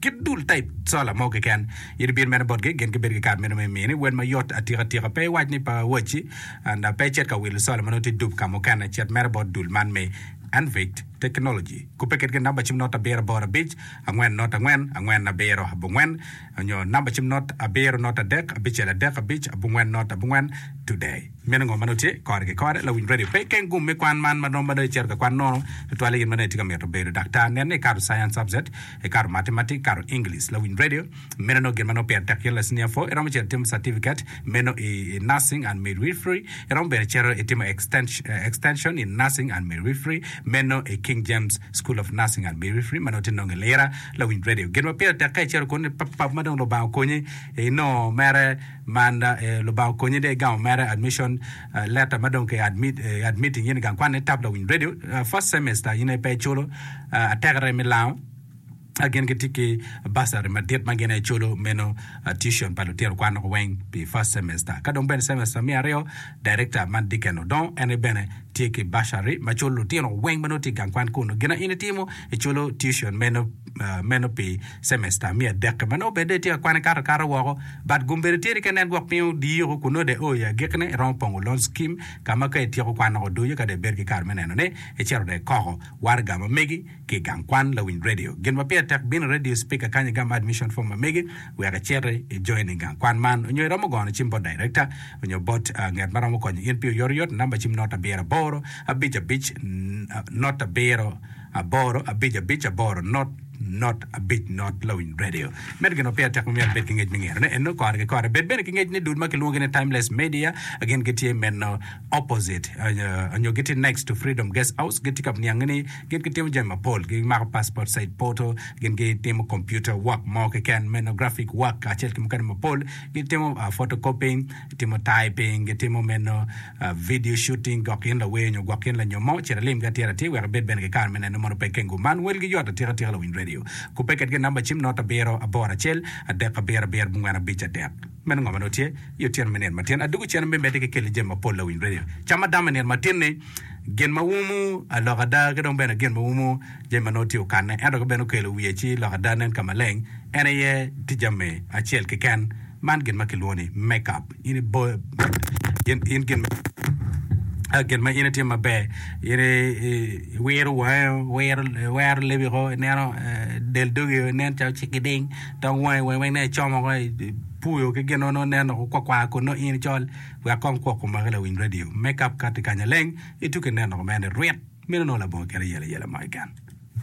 Kit dul taip cola mo keken. Yadi pire mene botgi, gin gibedo ki kare meno me mini wel mayot atikatika. Pe iwac ni pa wacci anda pe ecit ka wilo cola ma nongo tye dub ka mukene. Cet mere bot dul man me Anvict Technology. Kubbe kitgi namba cim not abiro aboro abic, angwen not angwen, angwen abiro abongwen, nyo namba cim not abiro not adek, abicel adek abic, abongwen not abongwen. Today. Meno ngo ma nongo tye kore ki kore? Lawiny radio pe keng gum me kwan man ma romo ma dong icito ka kwan nono tutwale in ma dong itye ka mito bedo daktar. Nen ni ikato Science Subject. Ikato Matematik, ikato English, lawiny radio, meno nongo gin ma nongo pire tek kit lacnia pho. Iromo cito itimo Certificate meno i Nursing and Midwifery. Iromo bene cito itimo Extension in Nursing and Midwifery meno i King James School of Nursing and Midwifery ma nongo tye nongo i Lira, lawiny radio. Gin ma pire tek ka icito kunu ni pap pap ma dong Lubanga okonyi inongo mere man, Lubanga okonyi dong igamo mere, admission. Leta ma dong ki admit in gang kwan ni tap lawiny radio first semester in aye pe iculo atekere me lango gin ki tye ki bursary madit ma gin aye iculo meno tuition pa lutino kwan loko weng pi first semester ka dong bene semester me aryo director man Dicken Odongo en aye bene tye ki bursary ma culo lutino weng ma nongo tye igang kwan kunu gina in itimo iculo tuition meno pi Cemester me adek-ki ma nongo obedde itye ka kwane kato akata woko, but gum bedo tyeri kene en gwok piny odiyi oko kun nongo dong io i agikine iromo pongo loan scheme ka ma ka ityeko kwan nongo odonyo ka dong ibedo ki kare me nenone, icito dong ikoko. Waraga ma megi ki i gang kwan lawiny radio. Gin ma pire tek bino i radio speaker kany igam admission form ma megi wek iciti i join i gang kwan man onyo iromo gono cim bot director onyo bot nget ma romo konyo in pi oyotoyot i namba cim not abiro aboro abic abic not abiro aboro abic abic aboro not not abic not lawiny radio medo gin ma peya tek ma myero ibed ki ngec me ngero ne eno kore ki kore bed bene ki ngec ni dul ma kilwongo ni timeless media gin gitye meno opposite onyo gitye next to freedom guest house gitye ka niange ni gin gitimo jami mapol gi mako passport side portal gin gitimo computer work mo keken meno graphic work acel ki mukene mapol gitimo photocopying timo typing gitimo meno Video Shooting, Gwok in lawer nyo gwok in lanyom mo, cit ilimgi atir atir wek ibed bene ki kare me neno mono pe kengo man. Welgi yot atika atika lawiny radio. Kubbe kedgi i namba cim not abiro aboro acel adek abiro abiro abongwen abic adek. Meno ngo ma nongo tye i otyeno me nino matin? Adwogo cen me medde ki kelle jami mapol lawiny radio. Cam ma damo i nino matin ni gin ma umu alok ada ki dong bene gin ma umu jami ma nongo tye okanne ento ka bene okelo wiye ci lok ada nen ka maleng en aye ticca me acel keken man gin ma kilwongo ni makeup. in iboyo in gin ma in itimo maber in iwiro wangi iwero lebi woko ineno del dogi nen calo ocek ki ding dong wangi weng nen calo icomo woko ipuyo ki gin mogo nen dok okwar kwar kun nongo in icol wek kong kwok omaki lawiny radio me kap ka tye kanya leng ituki nen dok omene rwit meno nongo labongo kite yelo ayela mo keken.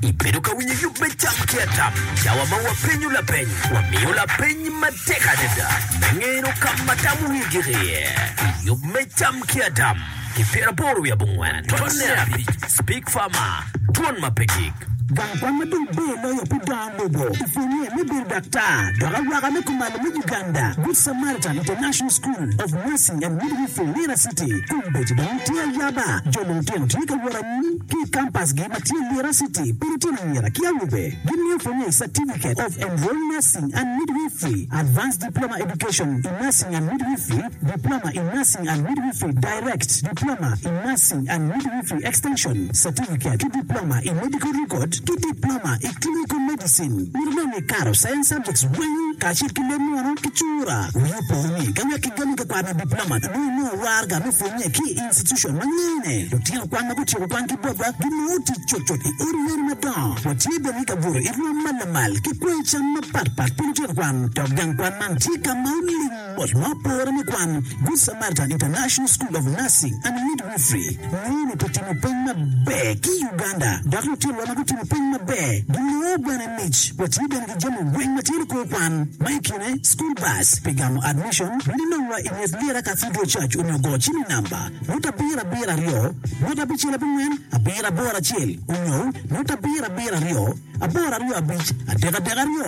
Ibedo ka winyo yub me cam ki atap? Cawa ma wapenyo lapeny, wamiyo lapeny matek adada me ngeno ka ma tam wiye gik iye. I yub me cam ki atap ki pyeraboro wiye abongwen totne abic, Speak Farmer, Dwon ma pe gik. Gang kwan ma dong ber loyo pi dongo lobo i pwonnye me bedo daktar dok awaka me kumalo me Uganda, Good Samaritan International School of Nursing and Midwifery, Lira City, Kombeddi dong tye ayaba, jo lutino tye ka wot Mon ki i kampasgi ma tye i Lira City pi lutino anyira ki awobe gimiyo pwonye i Certificate of Enrolled Nursing and Midwifery, Advanced Diploma Education in Nursing and Midwifery, Diploma in Nursing and Midwifery Direct, Diploma in Nursing and Midwifery Extension, Certificate ki Diploma i Medical Record ki Diploma i Clinical Medicine. Mito bene ni ikato Science Subjects weng kacel ki leb munu ki cura. Wiyi opo ni ka wek igamo tekwaro me Diploma nyo inongo waraga me pwonye ki i. Constitution ma ngeyo ne lutino kwan ma gutyeko kwan ki botwa gi ma otic cutcut i odi yadi madongo. Wa tye bene ki ka gudo i rwom ma lamal ki kweyo cam ma pat pat pi lutino kwan. Dok gang kwan man tye ka ma oling mot ma opore me kwan. Good Samaritan International School of Nursing and Midwifery ngeyo ni ki timo peny maber ki Uganda dok lutinowa ma gutimo peny maber gingeyo bene Mic, Watye bene ki jami weng ma tye nikwo kwan, ma i kine school bus pi gamo admission, miti nong wa i nget lira Cathedral Church onyo go cim i namba, nota abiro abiro aryo, nota abicel abongwen, abiro aboro acel, onyo nota abiro abiro aryo, aboro aryo abic, adek adek aryo.